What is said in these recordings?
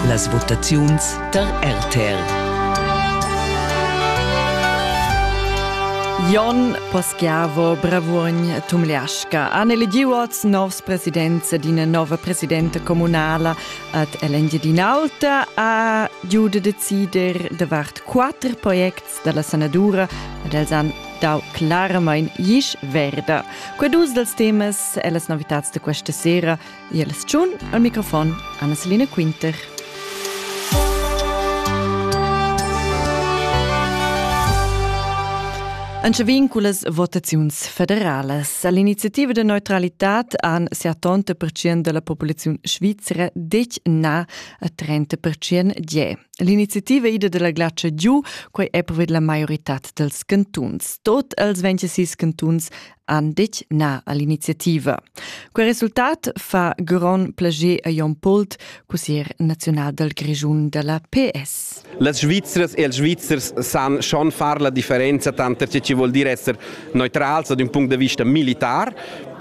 Las votaziuns tar RTL. Jon Paschiavo Bravuogn Tumliasca han eligiu als novs presidents d'ina nova presidenta communala ad Ell'Engiadin'Alta a giu da decider davart quatter projects dalla sanadura ed els han dau claramain gis verda. Quei dus dals temas e las novitads da questa sera Jels tschun al microfon Anna-Selina Quinter. Anche vinculas votaziuns federalas. All'iniziativa de neutralità han 70% della popolazione svizzera detg na a 30% die. L'iniziativa ida della glacia giù, quei è proved la maiorità dels cantuns. Tot els 26 cantuns han detg na all'iniziativa. Quel resultat fa grond plager a Jon Pult, cussier nazional dal Grischun da la PS. Las Svizzers e els Svizzers san schon far la differenza tanter tge che vuol dir esser neutrals ad ün punct da vista militar.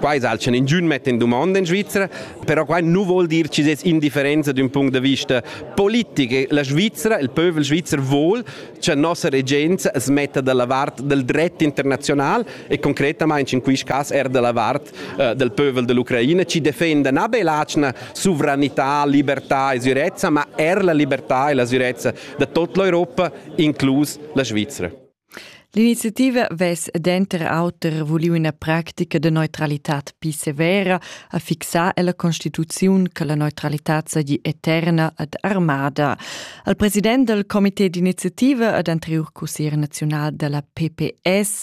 Quai salchan ingün metta in dumonda in Svizzera, però quai nu vuol dir che es indifferenza d'ün punct da vista politic. La Svizzera, il pövel svizzer vuol cha nossa regenza smetta dalla vart del dret internazional e concretamain in quist cas er della vart eh, del pövel dell'Ucraina ci defenda na be l'atschna sovranità, libertà e sicurezza, ma er la libertà e la sicurezza da tut l'Europa, inclus la Svizzera. L'iniziativa ves denter auter vuliu ina pratica de neutralitad pi severa a fixar ella constituziun che la neutralitad seigi eterna ad armada. Al president del comité d'iniziativa ad anterior cussier nazional della PPS,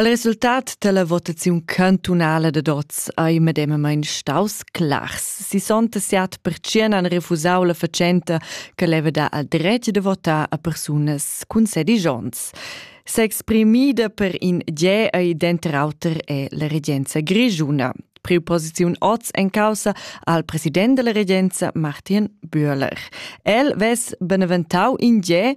Il resultat dalla votaziun cantunala dad oz ei medemamein staus clars. 67% han refusau la fatschenta che leva dar il dretg da votar a persunas cun sedici onns. S'exprimida per in ge ei denter auter è la regenza grischuna. Preposiziun oz en causa al president della regenza Martin Bühler. El vess beneventau in ge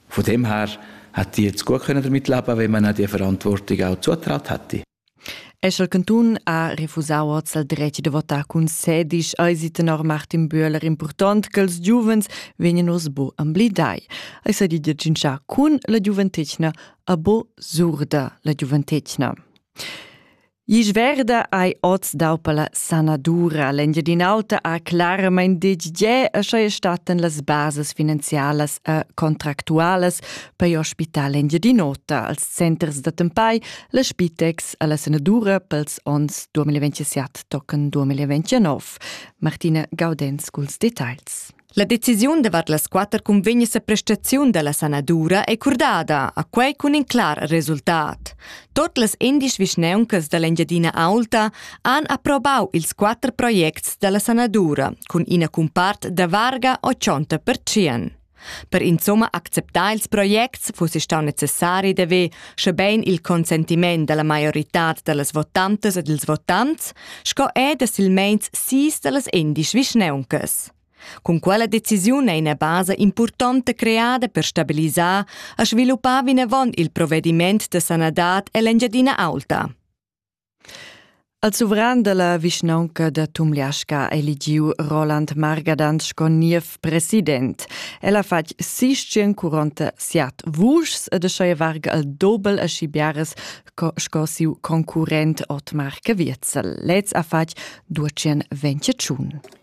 Von dem her hätte ich jetzt gut können damit leben, wenn man die Verantwortung auch zugetragen hätte. Escher Cantun ha refusau hoz il dretg da votar cun sedisch eisi tenor Martin Bühler important che ils giuvens vegnan oz bo amblidai. Ei sa di giungià cun la giuventetgna a bo surda la giuventetgna. Isch verda ei oz dau per la sanadura. L'Engiadin'Alta ha claramain deditgà a schai statten las bases finanzialas e contractualas per l'ospital Engiadin'Ota als centers da tempai, la Spitex e la sanadura pels onns 2027 tochen 2029. Martina Gaudenz culs detagls. La decisiun davart las quatter cunvegnas a prestaziun da la sanadura è curdada, a quai cun in clar resultat. Tot las indisch vischneuncas da l'Engiadina Aulta han approbau ils quatter projects da la sanadura cun ina cumpart da varga 80%. Per insomma acceptar ils projects fuss stau necessari d'haver, schebein il consentiment dalla maioritad dallas votantas e dils votants, sco er da silmeins sis dallas endisch vischneuncas. Cun quella decisiun è ina basa impurtonta creada per stabilisar e sviluppar vinavon il provediment da sanadad ell'Engiadina Aulta. Al suvran dalla vischnaunca da Tumliasca è eligiu Roland Margadan sco niev president. El ha fatg sistien curonta siat vuschs ed schei varga al dobel a schibiares sco siu concurrent Otmar Caviezel. Lez ha fatg 225.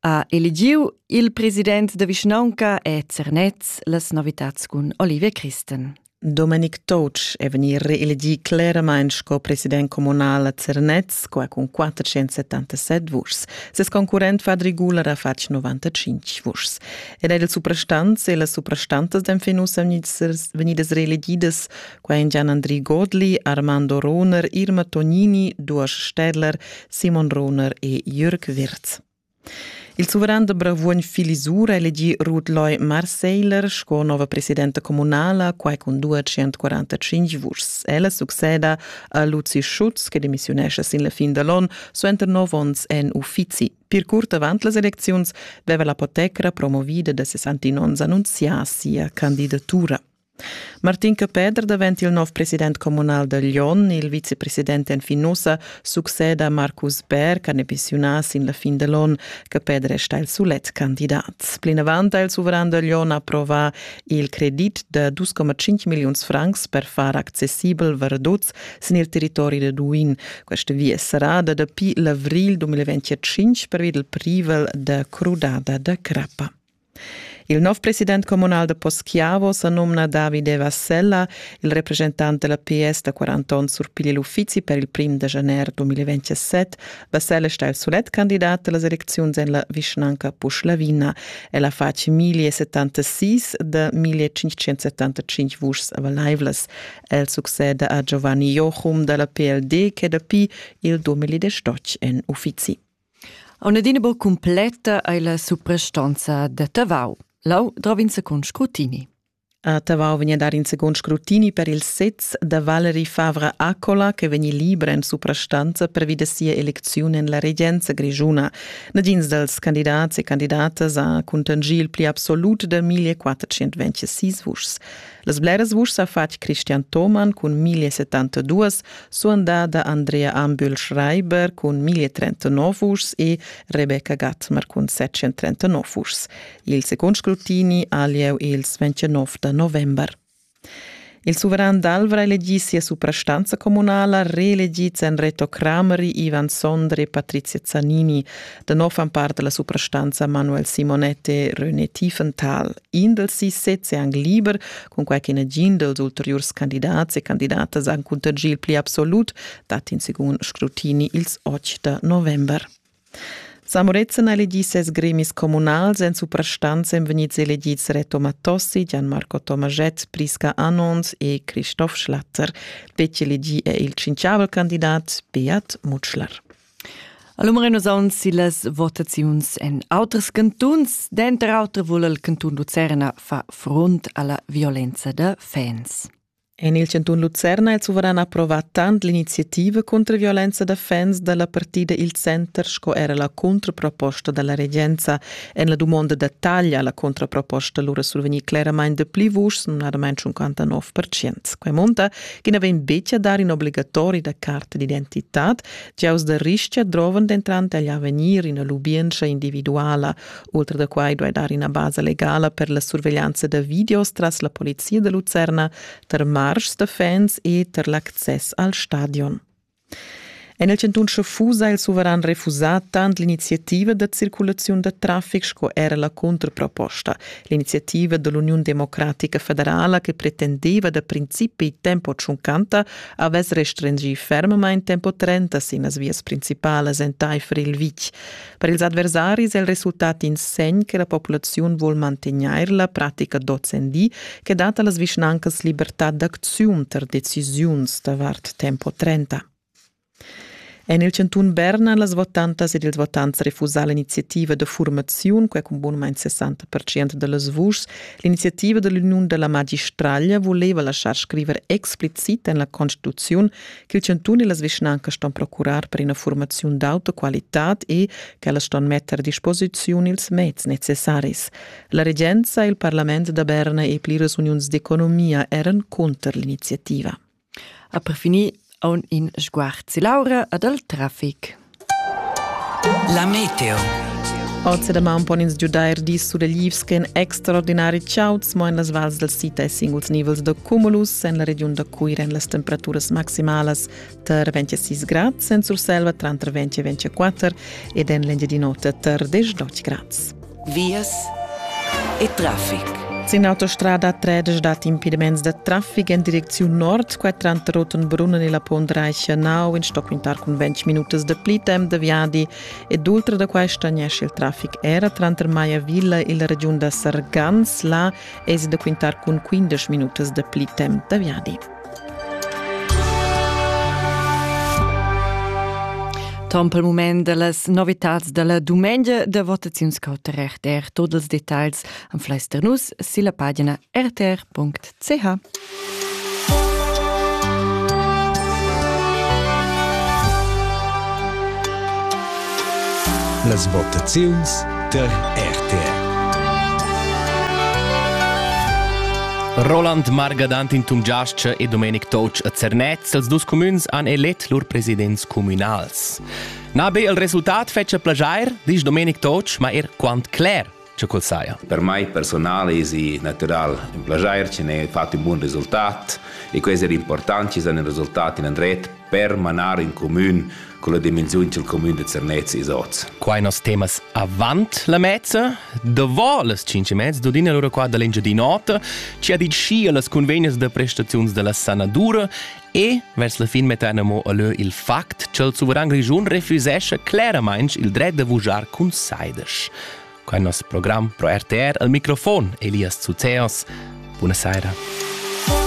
ha eligiu il president da vischnaunca e Zernez las novitads cun Olivia Christen. Domenic Touch è vegnì reelegì cleramain sco president comunal a Zernez, qua cun 477 vuschs. Ses concurrent Fadri Guler ha fatg 95 vuschs. Ed er il suprastants e las suprastantas d'enfin ussa vegnidas reelegidas Quaingian Andri Godli, Armando Rohner, Irma Tognini, Duosch Städler, Simon Rohner e Jürg Wirz. Il suveran de Bravuogn Filisura elegi Ruth Loy Marseiler sco nova presidenta comunala quai cun 245 vuschs. Ella succeda a Luzi Schutz che demissiunesce sin la fin dall'on suenter nov onns en uffizi. Per curt avant las elecziuns veva la potecra promovida da 69 annunzià sia candidatura. Martin Capeder davent il nov president communal da Lyon, il vicepresident en Finusa, succeda Marcus Bär ch'ha emissiunà sin la fin da l'onn. Capeder resta il sulet candidat. Plinavant ha il suveran da Lyon approvà il credit da 2,5 milliuns francs per far accessibel Verdoz sin il territori da Duin. Questa via sarà da dapi l'avrigl 2025 pervi dal privel da crudada da crappa. Il nov president communal da Poschiavo sa numna David Eva Sella, il representant della PS da 40 onns surpiglia l'uffizi per il prim da janer 2027. Vassella sta il solet candidat dalla elecziun en la vischnanca Puschlavina. Ella fa 1076 da 1575 vuschs avalaivlas. El succede a Giovanni Jochum dalla PLD che dapi il 2018 en uffizi. Auna adina buca cumpletta ei la suprastonza da Tavau. Lau drovinza cun scrutini. A Tavau vegn a dar in secund scrutini per il sez da Valerie Favre Accola che vegni libra en suprastanza pervi da sia elecziun en la regenza grischuna. Nagins dals candidats e candidatas ha cuntangì il pli absolut da 1426 vuschs. Las bleras vuschs ha fatg Christian Thomann cun 1072, suandada Andrea Ambühl-Schreiber cun 1039 vuschs e Rebecca Gatmer cun 739 vuschs. Il secund scrutini ha lieu ils 29 da november. Il suveran d'Alvra elegì sia suprastanza communala, reelegids èn Reto Crameri, Ivan Sondre e Patrizia Zanini. Da nov fan part da la suprastanza Manuel Simonet e René Tiefenthal. in dels sis sezs è anc liber, cunquai che negin dels ulteriurs candidats e candidatas han cuntergì il pli absolut, dat in secund scrutini ils 8 da november. Samorezen ha elegì ses gremis communals, en suprastanz èn vegnids elegids Reto Mattossi, Gianmarco Tomaschett, Priska Anons e Christoph Schlatter. Betg elegì è il cinciavel candidat Beat Mutschler. Allora renosaun sillas votaziuns en auters cantuns. Denter auter vul il cantun Lucerna far front alla violenza da fans. En il cantun Lucerna ha il suveran approvat tant l'iniziativa contro violenza da fans dalla partida Il Center sco era la contraproposta dalla regenza. En la dumonda da taglia alla contraproposta lura survegnì claramain de pli vuschs, numnadamain 59%. Quai munta ch'i na vegn betg a dar in obligatori da carta d'identitad Giaus da rischia drovan dentant agl avegnir ina lubientscha individuala. Oltre da quai duai dar ina basa legala per la surveglianza da videos tras la polizia da Lucerna, tar marschs da fans e tar l'access al stadion. En il cantun Schaffusa ha il suveran refusà tant l'iniziativa da circulaziun da traffic sco era la contraproposta. L'iniziativa dell'Union Democratica Federala che pretendeva da principi tempo tschuncanta avess restringì fermamain tempo 30 sin las vias principalas entaifer il vitg. Per ils adversaris è il resultat in segn che la populaziun vuol mantegnair la pratica d'ozendi che dat a las vischnancas libertà d'acziun tar decisiuns davart tempo 30. En il chantun Berna han las votantas ed ils votants refusà l'iniziativa da furmaziun, quai cun bunumain 60 da las vuschs. L'iniziativa da l'uniun da la magistraglia vuleva laschar scriver explicit en la Constituziun ch'il chantun e las vischnancas ston procurar per ina furmaziun d'auta qualitad e ch'ellas ston metter a disposiziun ils meds necessaris. La regenza e il parlament da Berna e pliras uniuns d'economia eran cunter l'iniziativa. Ha per finir aun in sguard si Laura ad al traffic. La meteo. Oggi da maun pon ins giudair dis suleglivs che en extraordinari chauds, mo en las vals del sita e singuls nivels da cumulus. En la regiun da Cuira en las temperaturas maximalas tar 26 grad, en Surselva tra 20 e 24 ed en l'Engiadin'Ota tar 18 grad. vias e traffic. Sin autostrada 13 dat impediments da traffic en direcziun nord, quai tranter Rottenbrunnen e la Pondreicher Nau in stoquintar cun 20 minutas da pli temp da viadi ed ultra da quai stagnesce il traffic era tranter Maiavilla e la regiun da Sargans. Là esi da quintar cun 15 minutas da pli temp da viadi. Tom pel mument da las novitats da la dumengia da votaziuns cauter RTR. Tot els detagls am fleister nus silla pagina rtr.ch. Las votaziuns der RTR. Roland Margadantin Tumgiascha e Domenic Toc a Zernez, els dus cumüns han elet lur presidents communals. Na be il resultat fetscha plajair, disch Domenic Toc, ma er quant cler che quel saja. Per mai personal es natural in plaschair che ne fatto un buon risultat e questo è importante, ci sono risultati in andret per manar in comune con la dimensione del comune de Zernez e Soz. Qua nos temas avant la mezza, dovo las 5 mezza, dodina l'ora qua dall'Engiadin'Ota, ci ha dit sci las convegnes de prestazions della sanadura E vers la fin mettan amo allö il fact ch'el suveran grischun refusescha cleramainch il dret da vujar cun saidesch. Qua nos program pro RTR al microfon Elias Zuzeos. Buona saira.